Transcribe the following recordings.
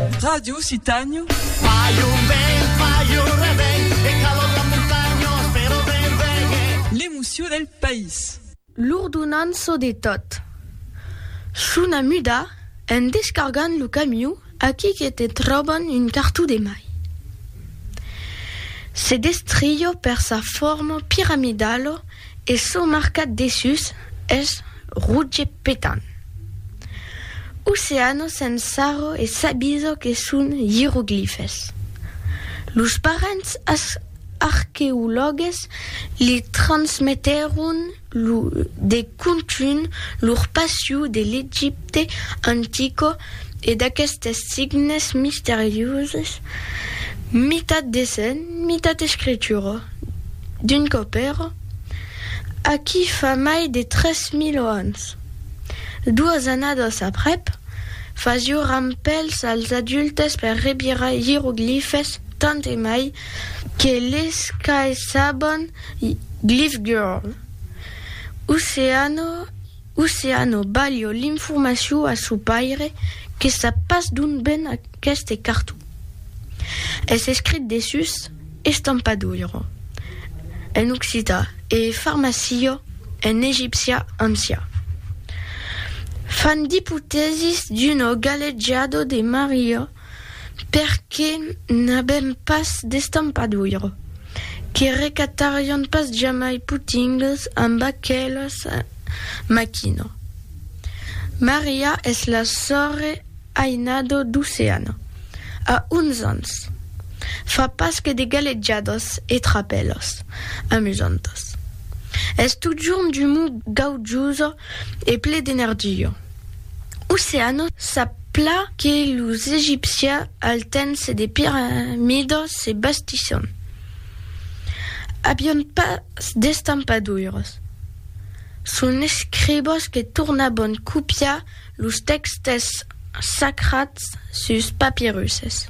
Radio Occitània. Fai un vent, fai un revent, e calor la montanha, però ven, ven, e. L'emoció del país. L'ordonança de tot. Chuna muda, en descargant lo camiu, aquí que te tròban un cartó de mai. Se destrió per sa forma piramidala, E çò marcat dessús es rouge petant. Oceano se'n sarro e s'abiso que son ieroglifes. Los parents arqueològues li transmetèron lo de contunh lor passion de l'Egipte antico e d'aquestes signes misterioses, mitat dessenh, mitat escritura. d'un copèro aquí fa mai de tres mil ans. Doas annadas aprèp, fasió rampèls als adultes per revirar ieroglifes tant e mai que les qu'aissabon Glyph Girl, Oceano, Oceano balho l'informacion a sò paire que sap pas d'ont ven aqueste carton. Es escrit dessús Estampadoiro en occità e Farmacillo en egipcià ancià. Fan d'ipotèsis d'uno galejado de Maria. perque n'avèm pas d'estampadura, que recatarion pas jamai putingues amb aquela maquina. Maria es la sòrre ainada d'Oceana, a 11 ans, fa pas que de galejadas e trapèlas amusantas. Es totjorn d'umor gaujosa e ple d'energia. Oceano sap plan que los egipcians al temps des piramidas se bastisson avián pas d'estampadoiras. Son escribas que tornavan copiar los tèxtes sacrats sus papirusses.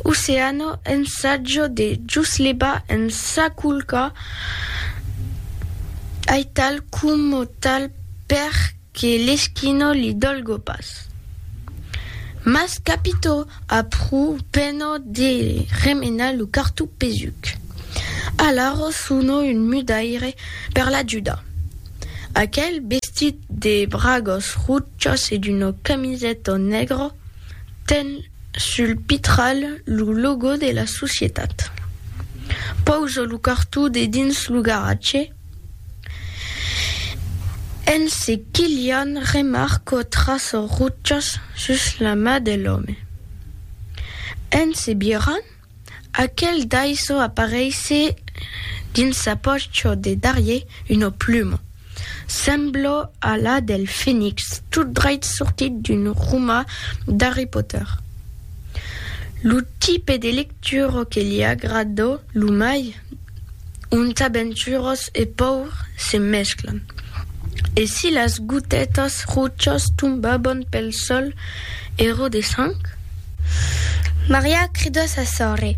Oceano ensatja de juslevar en sa culca aital coma tal. Per que l'esquino li dolgo pas. Mas capito a pro peno de remenar lo cartou pesuc. Alara sono un mudaire per l'ajudar. Aquel bestit de bragas rochas e d'una camiseta negra ten sul pitral lo logo de la societat. Pausa lo cartou dedins lo garatge. En se quilhant, remarco traços rutjats sus la ma de l'òme. En se birrant, aquel daissò apareisse dins sa pòcho de darrier una pluma, sembla a la del fenix tot dreit sortit d'un roma d'Harry Potter. Lo tipe de lectura que li agrada lo mai? ont aventurós e paur se mesclan, e si las gotètas rochas tombaban pel sòl ero de sang? Maria cridó sa sòrre,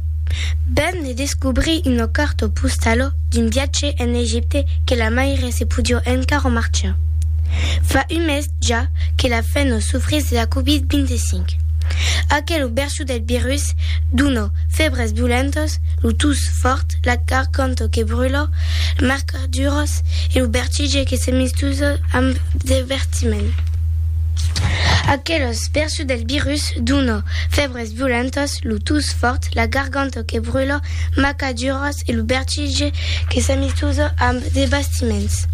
ben ne descobrí una carta postala d'un viatge en Egipte que la maire se podió encara marchar. Fa un mes ja que la fèna sofrís de la Covid-25. Aquela version Lo del virus duna febres violentas, lo tus fòrt, la garganta que brula, las marcaduras e lo vertige que se mistusa amb devertiment. Aquelas versions del virus duna febres violentas, lo tus fòrt, la garganta que brula, las marcaduras e lo vertige que se mistusa amb devertiments.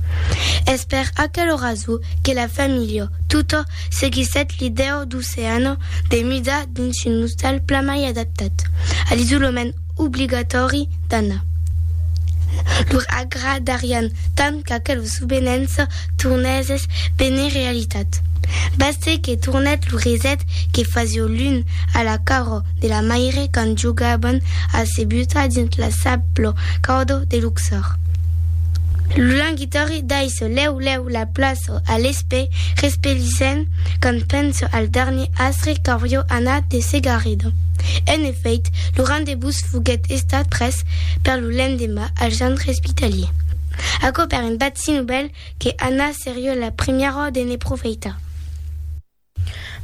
Es per aquela rason que la familha tota seguissèt l'idèu d'oceano de mida dins un ostal plan mai adaptat a l'isolament obligatòri d'Anna. Lor agradarián tant qu'aquel sobenhens tornèsses benir realitat. Bastèt que tornèt lo reset que fasió l'un a la carò de la maire quand jogaban a se butar dins la sablo caudo de Luxor. Lo languit. Tori daiso lèu lèu la plaço a l'espè, respelissent quand penso al darnier astre qu'aurió anat de Segarredo. En efèit, lo rendebús foguèt estat pres per lo lendemà al centre espitalier. Aquò per un bat si novèl que Anna serió la primièra de ne profeitar.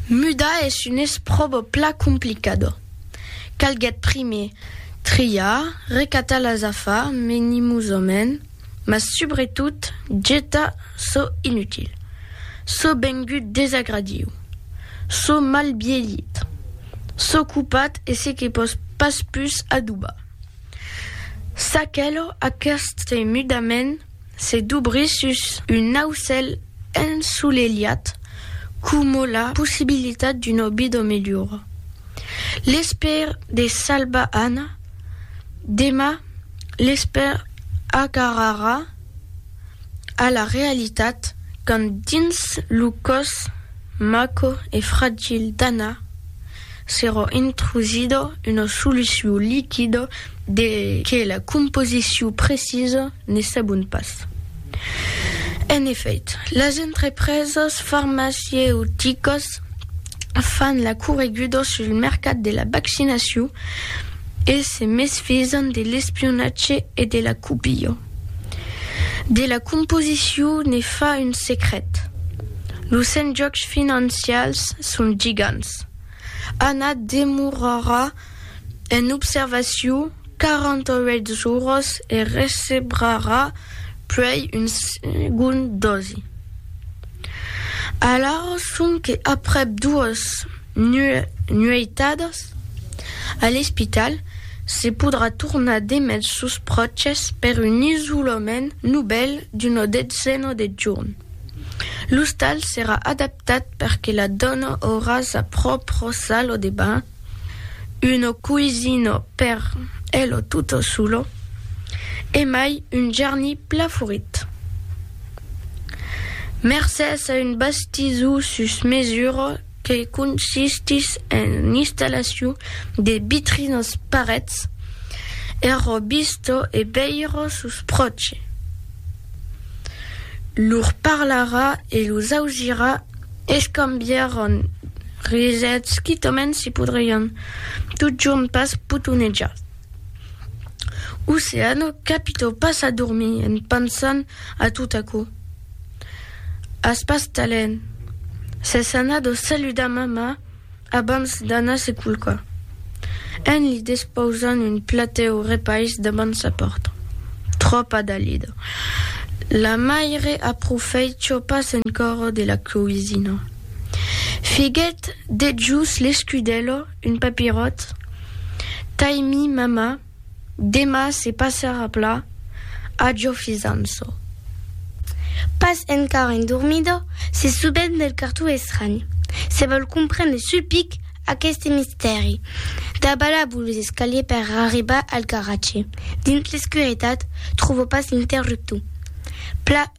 Muda es un espròbo plan complicado. Calguèt primier triar, recatar las afar menimosament, mas subretot getar çò inutil, çò vengut desagradiu, çò mal bielhit, çò copat e se que pòs pas pus adobar. S'aquelò, aqueste mudament, Se dobrir sus un aucèl ensolelhat coma la possibilitat d'una vida melhora. L'espèr de salvar Anna, demà l'espèr agarrarà a la realitat quand dins lo còs maco e fragil d'Anna S'èra intrusida una solucion liquida de que la composicion precisa ne sabon pas. En efèit, las entrepresas farmacieuticas fan la correguda sul mercat de la vaccinacion e se mesfisan de l'espionatge e de la copia. De la composicion ne fa un secret. Los enjòcs financials son gigants. Ana demorarà en observacion 48 jorns e recebrarà puèi un segond dosi. Alara sonque aprèp doas. nueitadas a l'espital, se podrà tornar demest sos pròches per un isolament novèl d'una detzena de jorn. L'ostal serà adaptat per que la dòna aurà sa pròpra sala de banh, una coisina per ela tota sola e mai un jarni pla florit. Mercés a un bastizó sus mesura, que consistís en l'installacion de vitrinas parets er robistò e veire sos pròches. Lor parlarà e los ausirà escambiaràn risets quitament si podrián totjorn pas potonejar. Oceano, capitau pas a dormir en pensant a tot aquò. As pas talent. S'es anat o saludar mamà abans d'anar se culcar, en li despausant un platèu repais davant sa pòrta. Tròpa dalida. La maire aprofèicha pas encara de la coisina. Figuèt dejús l'escudèla Un papiròt, Taimi mama, demà se passarà pla, ajo fizam-çò. Pas encara endormida, se subent del cartó estranh, se vòl comprendre sul pic aqueste mistèri. Dabalabo los escaliers per arribar al garatge, dins l'escuretat, tròvo pas l'interruptor. Pla.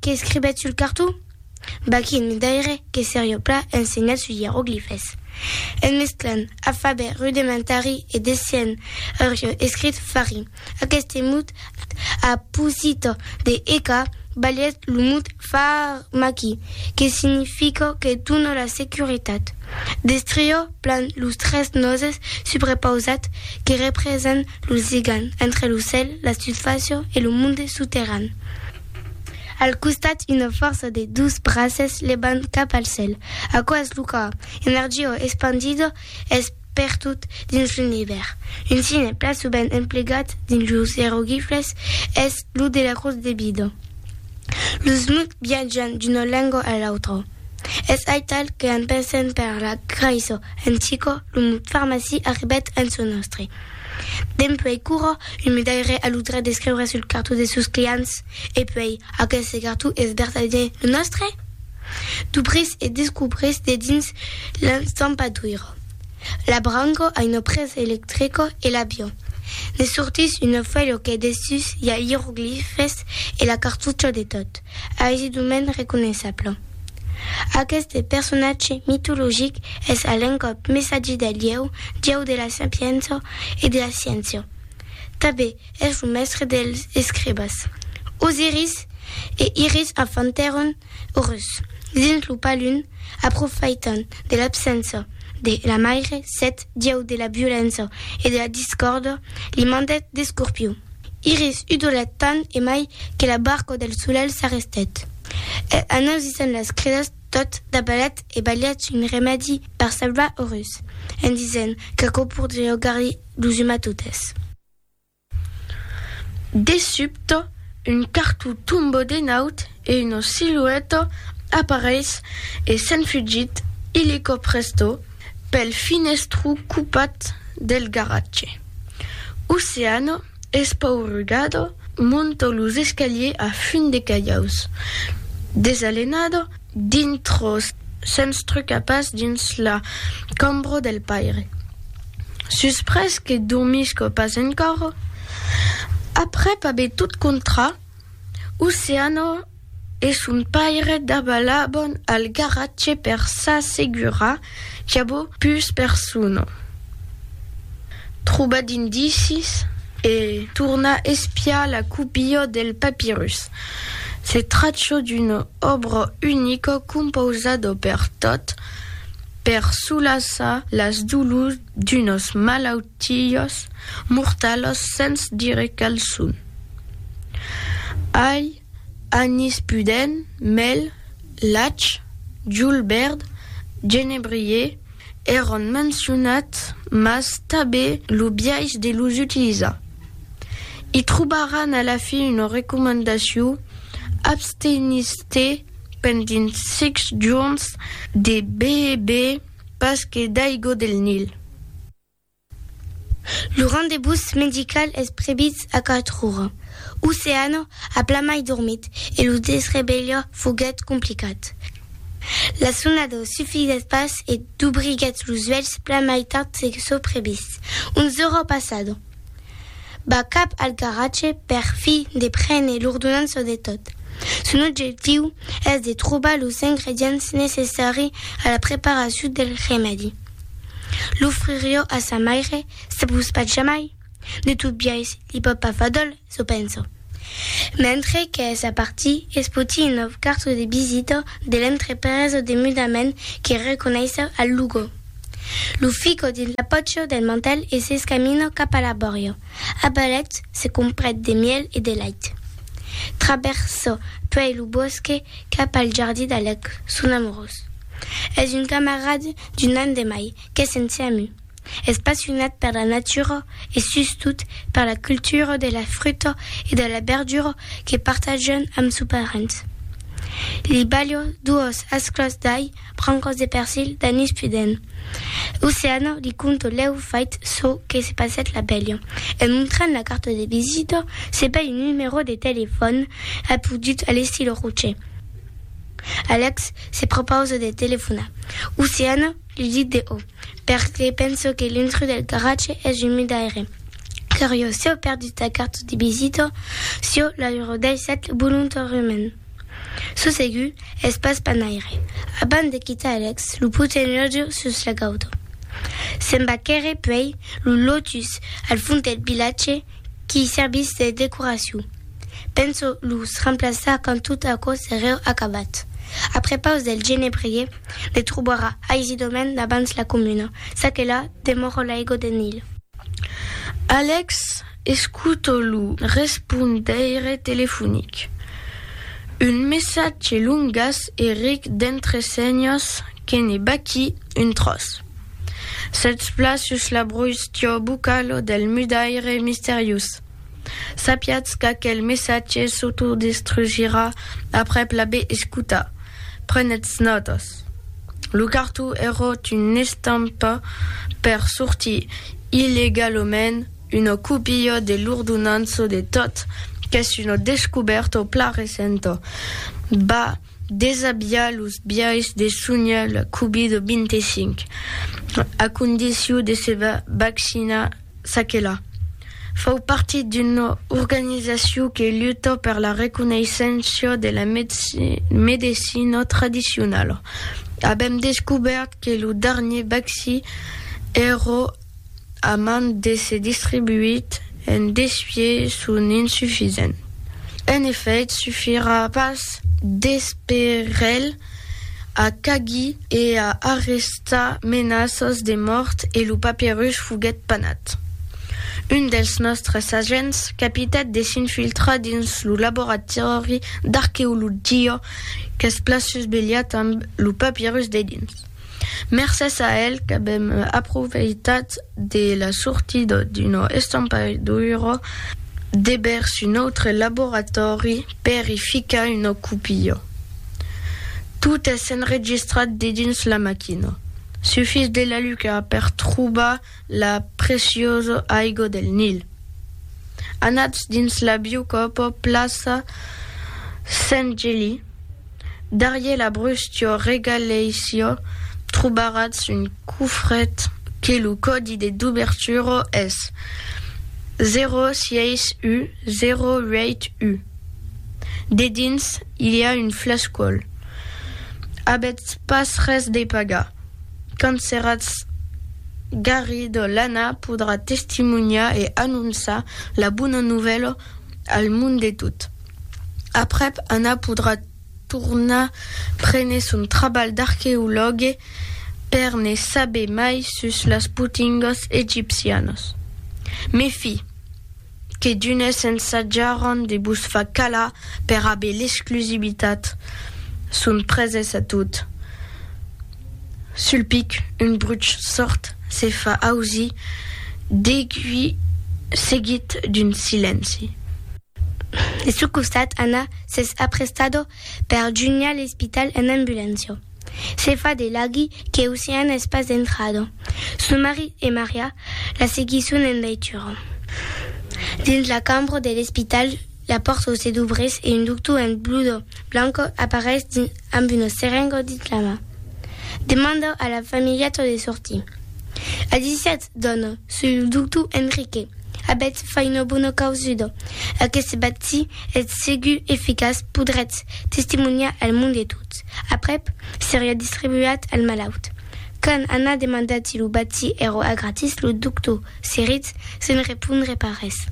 Qu'escribèt sul carton? Bah, quin midaire que serió pla ensenhat sus ieroglifes! En mesclant afabè rudementari e dessenh aurió escrit fari aqueste mot a posito de eca balhèt lo mot pharmaki, que significa que dona la securitat. Destrio plan los tres noses subrepausats que representan lo ligam entre lo cèl, la susfàcia e lo monde soterran. Al costat, una fòrça de dos braces levant cap al cèl. Aquò es lo còr, energia espandida es pertot dins l'univèrs. Un signe plan sovent emplegat dins los ieroglifes es lo de la crotz de vida. Los mots viatjan d'una lenga a l'autra. Es aital que en pensent per la craiço en Chico, lo mot farmacia arribèt en çò nòstre. Dempuèi quora, un medaire a lo drech d'escriure sul cartó de sos clients. E puèi, aqueste cartó es vertadament lo nòstre? Dubrís e descubrís dedins l'estampadoiro. L'abrango a una presa electrico e l'avio. Ne sortís una fuèlho qu'es dessús i a ieroglifes e la cartucha de tot. aisit un mens reconeissable. Aqueste personatge mitologic es a l'encòp messatge del ieu, dieu de la sapiença e de la sciéncia. Tanben es lo mèstre dels escribas. Osiris e Iris enfantèron Orus dins lo palun, aprofaitant de l'absença de la maire, Set, dieu de la violença e de la discòrda, li mandèt d'escorpiu. Iris udolat tan e mai que la barco del solelh s'arrestèt. E anoisissant las cridas, tot dabalat e balhat un remèdi per salvar o rus, en disent qu'aquò pordriá augar-li lo zuma totes. De subte, un cartó tombó de naut e una silueta apareis e se'n fugit illico presto pel finestru cupat del garatge. Oceano, espaurugado, monta los escaliers a fum de calhaus. Desalenado, dintro se'ns truca pas dins la cambra del paire. Suspres que dormisco pas encòra, aprèp aver tot contrat, Oceano e son paire dabalabon al garatge per s'assegurar qu'avó pus persona. Trobar d'indicis e tornar espiar la copia del papirus. Se trachó d'una òbra unica compausada per tot per solaçar las dolors d'unos malautiós mortalos sens dire quel son. Ai anís pudent, mèl, lach, julbèrd, genebrier, èron mencionats mas tabé lo biais de los utilizar. I trobaràn a la fin una recomandacion, abstenís-te pendent sics jorns de beber. Pas que d'aigo del Nil. Lo rendebús medical es previst a quatre ora. Oceano a plamai dormit e lo desrevelha foguèt complicat. La sonada sufisèt pas e dubriguèt los uèlhs plamai tard se çò previst, onze ora passada. va cap al garatge per fi de prene l'ordonança de tot. Son objectiu es de trobar los ingredients necessari a la preparacion del remèdi. L'ofririo a sa maire, se pus pas jamai, de tot biais li pòt pas fadol Çò penso. Mentre qu'es a partir, es poti un nòu carto de visita de l'entrepresa de mudament que reconeissa al Lugo. Lo fica dins la pòcha del mantèl e s'escamina cap a la bòria. A balets, se comprèt de mièl e de lait. Travèrsa puèi lo bòsque cap al jardí d'Alèc, son amorós. Es un camarad d'un an de mai, qu'es en CMU. Es passionat per la natura e sustot per la cultura de la fruta e de la berdura que partatjan amb su parent. Li balha doas asclas d'ai, brancas de persil, d'anís pudent. Oceana li conta lèu fait çò que se passèt la velha e montrant la carta de visita se bèi un numerò de telefòn apodut a l'estil rocher. Alex se prepausa de telefonar. Oceana li dit de o. perque penso que l'intrus del garatge es un midaire curiós, si au perdut la carta de visita, si au la redaissèt volontàriament. Çò segur es pas panaire. Abans de quitar Alex, lo poten lòtge sus la gauta. Se'n va quèrre puèi lo lotus al fons del vilatge qui servís de decoracion. Penso los remplaçar quand tot aquò sereu acabat. Après paus del genebrier, Le trobarà aisidament davans la comuna, ça que la demòra l'aigo de Nil. Alex escuta lo respondeire telefonic. Un messatge longas e ric d'entresenhas que ne baquí un tròç. Sètz pla sus la broustia bucala del mudaire misteriós. Sapiatz qu'aquel messatge s'autodestrugirà aprèp l'aver escotat. Prenetz nòtas. Lo cartó eròt una estampa per sortir illegalament una copia de l'ordonança de tot qu'es una descobèrta plan recenta. Va desabiar los biais de sonhar la Covid-25, a condicion de se vaccinar. S'aquela fau partit d'una organizacion que luta per la reconeisséncia de la medecina tradicionala, avèm descubèrt que lo darnier vaccí èra a man d'èsser distribuit en desfier son insufisent. En efèit, sufirà pas d'esperelh a cagui e a arrestar menaças de mòrt e lo papirus foguèt panat. Un dels nòstres agents capitèt de s'infiltrar dins lo laboratòri d'arqueologia qu'es plan susvelhat amb lo papirus dedins. Mercés a el qu'avèm aprofeitat de la sortida d'una estampaidura de vèrs un autre laboratòri per i ficar una copia. Tot es enregistrat dedins la maquina. Sufís de la luca per trobar la preciosa aiga del Nil. Anatz dins la biocòpa plaça Sent Geli. Darrier la bruscio regaleisio trobaratz un cofret que lo còdi de dubertura es 06U08U. Dedins i li a un flascòl. Avètz pas res de pagar. Quand seratz garrido l'Anna podrà testimonhar e anonçar la bona novèla al mond de tot. Aprèp, Anna podrà tornar prene son trabalh d'arqueològue per ne saber mai sus las potingas egipcianas. Mes fi, que d'unes ensatjaràn de vos far calar per aver l'exclusivitat, son preses a tot. Sul pic, un bruch sòrd se fa ausir degui seguit d'un silenci. De su costat, Anna s'es aprestado per junhar l'espital en ambulància. Se fa de laghi que Ocean es pas entrado. Su marit e Maria la seguisson en veitura. Dins la cambra de l'espital, la pòrta se dubrís e un doctor en blusa blanca apareis dins amb una serenga dins la man. Demanda a la familheta de sortir. A 17 Dona, soi lo doctor Enrique. Avètz fai una bona causuda. Aqueste vaccí es segur eficaç, podrètz testimoniar al mond e tot aprèp seriá distribuat al malaut. Quand Anna demanda ti lo vaccí èra a gratis, lo doctor se rit sens repondre pas res.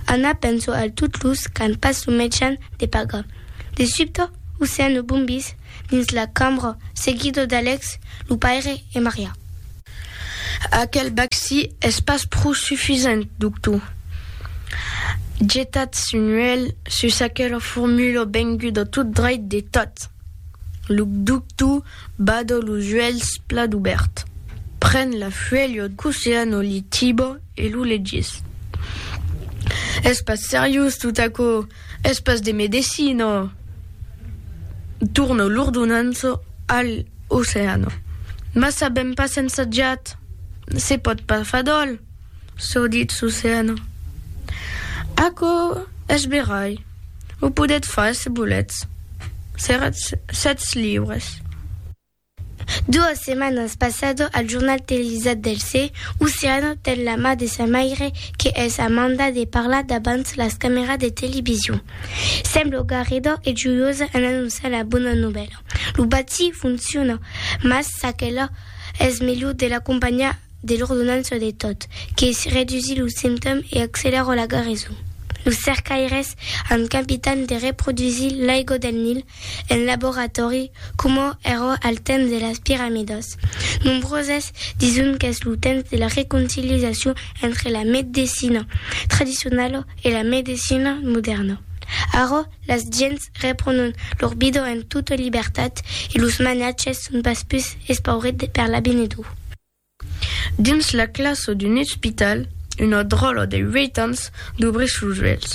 Anna pensa al tot los qu'an pas lo mejan de pagar. De subte, o sent lo bombís dins la cambra, seguida d'Alex, lo paire e Maria. Aquel bacci es pas pro sufisent, doctor. Getatz un uèlh sus aquela formula venguda tot dreit de tat. Lo doctor bada los uèlhs plat obèrt, pren la fuèlha d'Oceano Litiba e lo legís. Es pas seriós tot aquò! Es pas de medecina. Torno l'ordonança al oceano. Mas sabèm pas ensajat. Se pòt pas far d'òl, çò ditz l'oceano. Aquò es verai. O podètz far se volètz. Seratz sètz libres. Doas setmanas passado al jornal televisat del se, Oceano ten la ma de sa maire que es a manda de parlar davant las cameras de television. Semblo garedor e joiosa en anonçar la bona novèla. Lo bati fonciona, mas çaquela es melhor de l'acompanhar de l'ordonança de tot, que redusí lo simptom e acceleró la gareson. Los cercaires an capitan de reprodusir l'aigo del Nil en laboratòri coma èra al temps de las piramidas. Nombroses dison qu'es lo temps de la reconciliacion entre la medecina tradicionala e la medecina modèrna. Ara, las gents reprònon lor vida en tota libertat e los manatges son pas pus espaurits per l'avinedor. Dins la classa d'un ospital, una dròlla de uèit ans dubrís los uèlhs.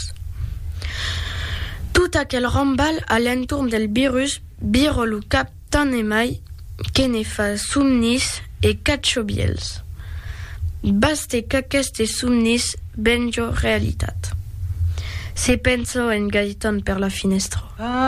Tot aquel rambalh a l'entorn del virus vira lo cap tant e mai que ne fa somnis e cachobièls. Baste qu'aquestes somnis venja realitat. Se pensa en Gaëtan per la finèstra.